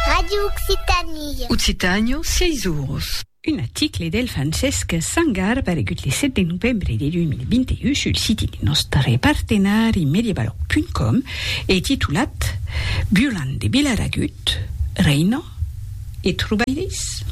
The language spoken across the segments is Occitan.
Radio Occitanie. Occitània, sièis oros. Un article del Francesc Sangar paregut le 7 de novembre de 2021 sul siti de nòstre partenari Mediabalòg.com e titulat Violant de Vilaragut, Reino e trobalhs?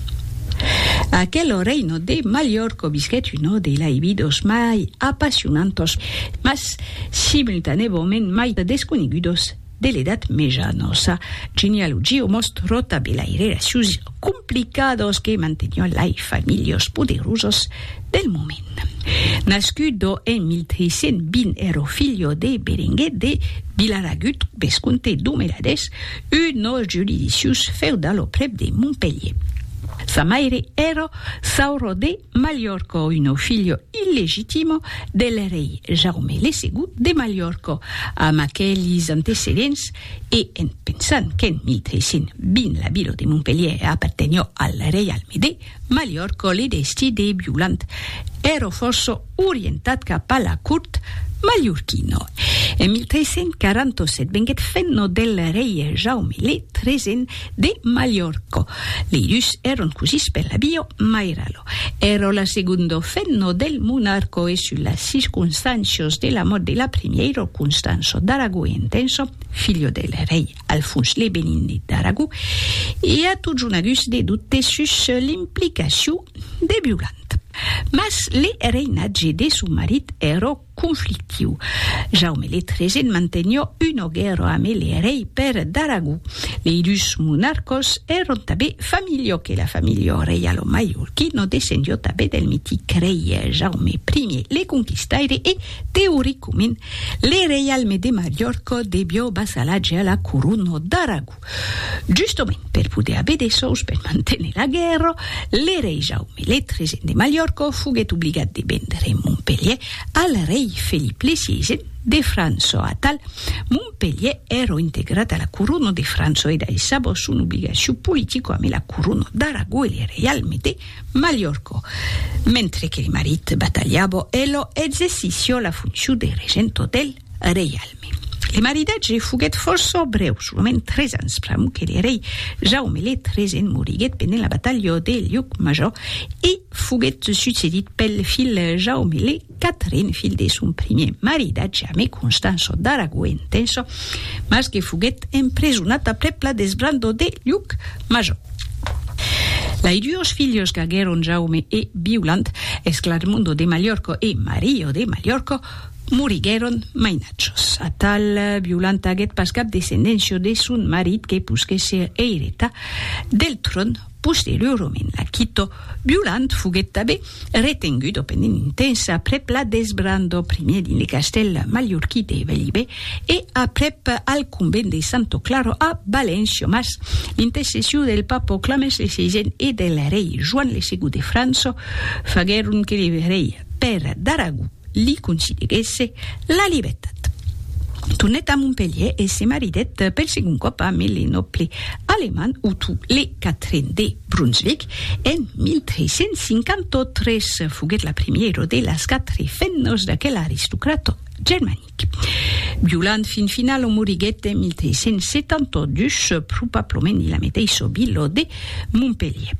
Aquelo reino de Mallorca visquèt una de lai vidos mai apassionantos, mas simultanèvament mai desconegudos, de l'Edat Meja nos sa genealogia o mos tròta de lai relacius complicados que mantenion lai familhos poderosos del moment. Nascudo en 1320 ero filho de Berenguer de Vilaragut, vescomte d'Omeladès, un nos juridicius feudalo prèp de Montpelhier. Sa maire ero Sauro de Mallorco, uno filho illegitimo del rei Jaume le Segon de Malhorco, amb aquelis antecedents, e en pensant qu'en 1320 la vila de Montpelhièr apartenhó al reialme de Malhorco le destí de Violant èró fòrça orientat cap a la cort malhorquina. En 1347 venguèt fenno del rei Jaume le Tresent De Mallorca. Li dus èron cosís per la bio, ma era lo èro la segondo fenno del monarco e sus las circonstàncios de la mòrt de la primièiro Constanço d'Aragó e Entenço, filho del rei Alfons le Benindi d'Aragó, i a totjonagus de dubtes sus l'implicacion de Violant. Mas le reinatge de son marit, èro conflictiu. Jaume le Tregent mantenio una guèrra ame le rei Per d'Aragó. Lei dus monarcos èron tabé familho que la familho reialo maiorquí no descendio tabé del mitic rei Jaume I le Conquistaire e, teoricomint, le reialme de Maiorco debio vasalatge a la corona d'Aragó. Justament per poder aver de sòus per manténer la guèrra, le rei Jaume le tresen de Malhòrca foguèt obligat de vendre Montpelhièr al rei Felip le siesen de França. Atal, Montpelhièr èra integrat a la corona de França e daissava son obligacion politica amé la corona d'Aragó e le reialme de Malhòrca, mentre que le marit batalhava e la exercissiá la foncion de regenta del reialme. Le maridatge foguèt fòrça brèu, solament tres ans, pr'amor que le rei Jaume le Tresen moriguèt pendent la batalha de Llucmajor e foguèt succedit pel filh Jaume le Quatren, filh de son primièr maridatge amé Constanço d'Aragó e Entenço, mas que foguèt empresonat aprèp la desbrandor de Llucmajor. Lai duos filhos qu'aguèron Jaume e Viuland, Esclarmondo de Mallorco e Mario de Mallorco. Moriguèron mainatjós. Atal Violanta aguèt pas cap descendencia de son marit que posquèt ser eireta del tròn posteriorament. La quito Violant foguèt tabé retengut o penenintens aprèp la desbrandor primièr dins le castèl mallorquí de Bellibè e aprèp al convent de Santo Claro a València, mas l'intercession del papa Clemens le Sisèn e del rei Joan le Segon de França faguèron que le rei Pèr d'Aragó Li considerèsse la libertat. Tornèt a Montpelhièr e se maridèt per segon còp a Mille nòble alemand Otto le Quatren de Brunsvic en 1353. Foguèt la primièra de las quatre femnas d'aquel aristocrata germanic. Violant fin final o moriguèt en 1372, probablament ila meteissa vila de Montpelhier.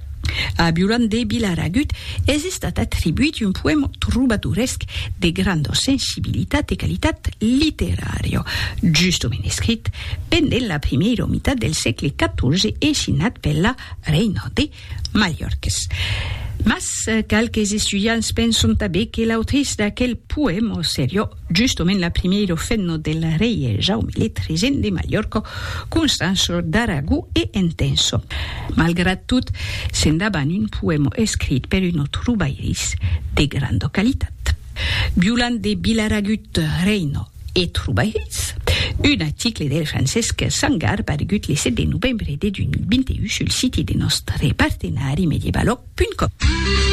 A Violant de Vilaragut es estat atribuit un poèma trobadoresc de granda sensibilitat e qualitat literària, justament escrit pendent la primièira mitat del sègle 14 e signat per la reina de Mallorques. Mas qualques estudiants penson tanben que l'autrice d'aquel poèma seriá justament la primièra femna del rei Jaume le Tresent de Mallorca, Constança d'Aragó e Entença. Malgrat tot, sent davant un poèma escrit per un autre bairís de granda qualitat. Violant de Vilaragut, Reina. E trobairetz un article del Francesc Sangar paregut le 7 de novembre de 2021 sul siti de nòstre partenari medievaloc.com.